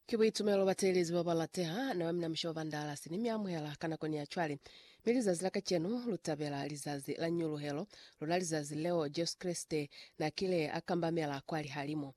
Ki buitumelo bateelezi babalateha, na bamina mushe wa Vandalasi, ni miamuhela ka nakoni ya cwale, mi lizazi la kacenu lutabela lizazi la Nyuluhelo luna, lizazi leo Jesu Kreste nakile akambamela kwa lihalimu.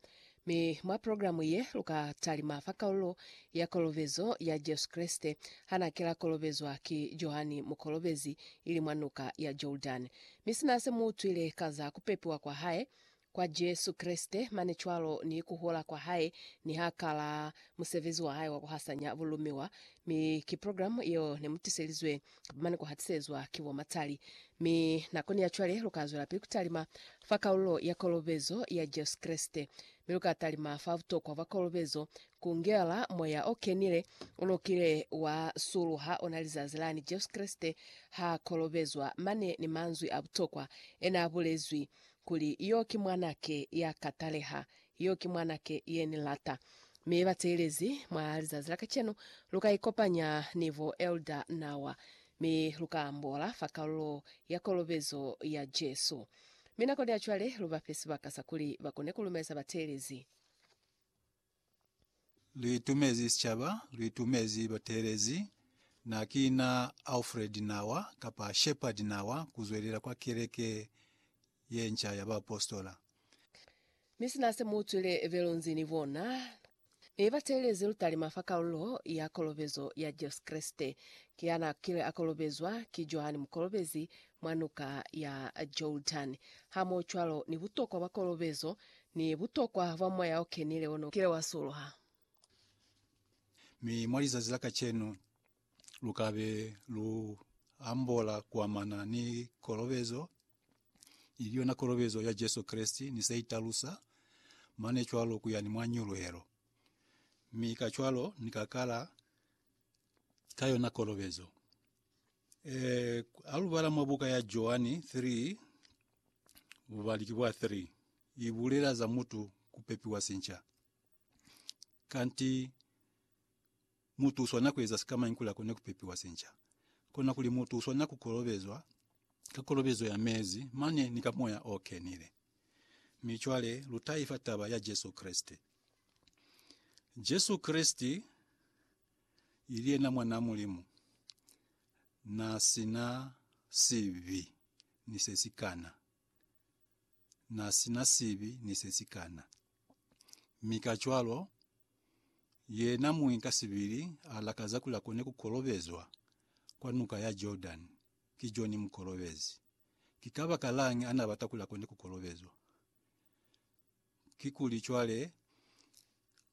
Mi mwa programu ye, luka talima fa kaululo ya kolobezo ya Jesu Kreste hanakila kolobezwa ki Johani Mukolobezi ili mwa Nuka ya Jordani. Mi sina se muutwile ka za kupepiwa kwa hae, kwa Jesu Kreste, mane cwalo ni ku hola kwa Hae, ni ha kala musebezi wa Hae wa ku hasanya bulumiwa. Mi ki program yeo ne mu tiselizwe, kapa mane ku hatisezwa, ki bo matali. Mi nakoni ya cwale lu ka zwelapili ku talima fa kalulo ya kolobezo ya Jesu Kreste. Mi lu ka talima fa butokwa bwa kolobezo, ku ngela Moya o Kenile u lo kile wa suluha ona lizazi lani Jesu Kreste ha kolobezwa, mane ni manzwi a butokwa ena bulezwi, Kuli, Yo ki Mwanake ya ka taleha. Yo ki Mwanake ye Ni lata. Mi, bateelezi, mwa lizazi la kacenu, lu ka ikopanya ni bo Elder Nawa, mi lu ka ambola fa kalulo ya kolobezo ya Jesu. Mi nakoni ya cwale, lu ba fe sibaka sa kuli ba kone ku lumeza bateelezi. Lu itumezi sicaba, lu itumezi bateelezi. Na ki na Alfred Nawa, kapa Shepherd Nawa, ku zwelela kwa keleke ye nca ya baapositola. Mi sina se mu utwile belonzi ni bona, ne ba teelezi lutalima fa kalulo ya kolobezo ya Jesu Kreste, ki ya na kile a kolobezwa ki Johani Mukolobezi mwa Nuka ya Jordani. Hamoho cwalo ni butokwa bwa kolobezo, Ni butokwa bwa Moya o Kenile ono kile wa suluha. Mi mwa lizazi la kacenu, lukabe lu ambola kuamana ni kolobezo, ili yona kolobezo ya Jesu Kreste ni se italusa, mane cwalo kuya ni mwa nyuluhelo. Mi kacwalo Ni ka kala ka yona kolobezo. Eh, alubala mwa buka ya Joani 3, bubali ki bwa 3, ibulela za mutu kupepiwa sinca. Kanti mutu uswana kueza sikamañi kuli akone kupepiwa sinca? Kona kuli mutu uswana kukolobezwa ka kolobezo ya mezi mane ni ka Moya o Kenile. Mi cwale lutaifa taba ya Jesu Kreste. Jesu Kreste ili yena Mwanaa Mulimu, na si na sibi ni se si kana. Na si na sibi ni se si kana. Mi kacwalo, yena muñi ka sibili a lakaza kuli a kone ku kolobezwa kwa Nuka ya Jordani ki Joni Mukolobezi. Ki kabakalañi a na bata kuli a kone ku kolobezwa? kikuli cwale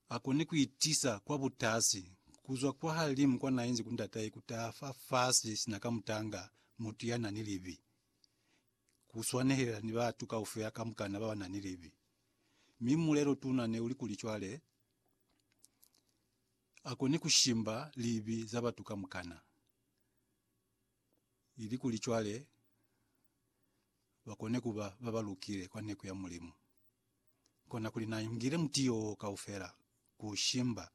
akoni kuitiisa kwa butasi kuzwa kwahalimu kwanainzi ku ndatahe kutaha fafasi sina kamutanga mutu yanani libi. Kuswanehelela ni batu kaufela kamukana babanani libi. Mi mulelo tuna neuli kuli cwale akoni kushimba libi za batu kamukana. ilikuli cwale bakone kuba babalukile kwa neku ya Mulimu. Konakuli naingile mutiyo wo kaufela, kuushimba,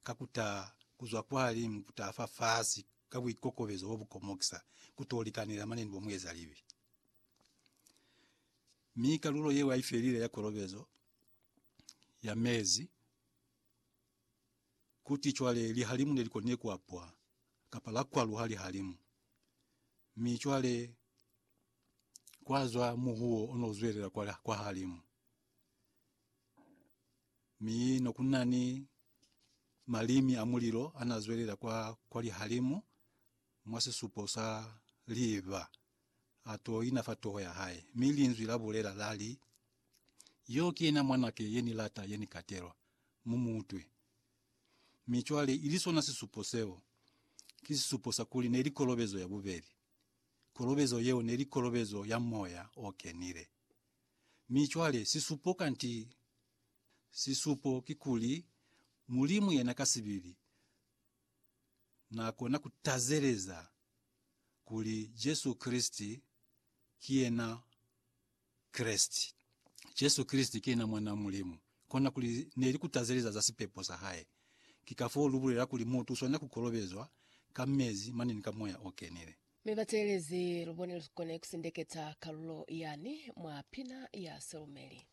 ka kutaha kuzwa kwalimu kutaha fafasi ka buikokobezo bobukomokisa, kuto likanela mane ni bomuezalibi. Mi kalulo yeo yaifelile ya kolobezo ya mezi. Kuti cwale lihalimu ne li koni ku apwa, kapa la kwaluha lihalimu. Mi cwale kwa zwa muhuwo o no zwelela kwa, kwahalimu. Mi no ku na ni malimi a mulilo a na zwelela kwa, kwa lihalimu, mwa sisupo sa liiva. a to ina fa toho ya hae, mi Linzwi la bulela, la li, Yo ki yena Mwanake ye Ni lata, ye Ni katelwa. Mu mu utwe. Mi cwale, ili sona sisupo seo, ki sisupo sa kuli neli kolobezo ya bubeli. Kolobezo yeo neli kolobezo ya Moya o Kenile. Mi cwale, sisupo, kanti, sisupo kikuli, Mulimu yena ka sibili, Na kona ku tazeleza. kuli Jesu Kreste ki yena Kreste. Jesu Kreste ki yena Mwan'a Mulimu. Kona kuli ne li kutazeleza za sipepo sa hae. Ki kafoo lu bulela kuli mutu u swanela ku kolobezwa ka mezi mane ni ka Moya o Kenile. Mi bateelezi, lubone lu kone kusindeketsa kalulo yani mwa pina ya silumeli.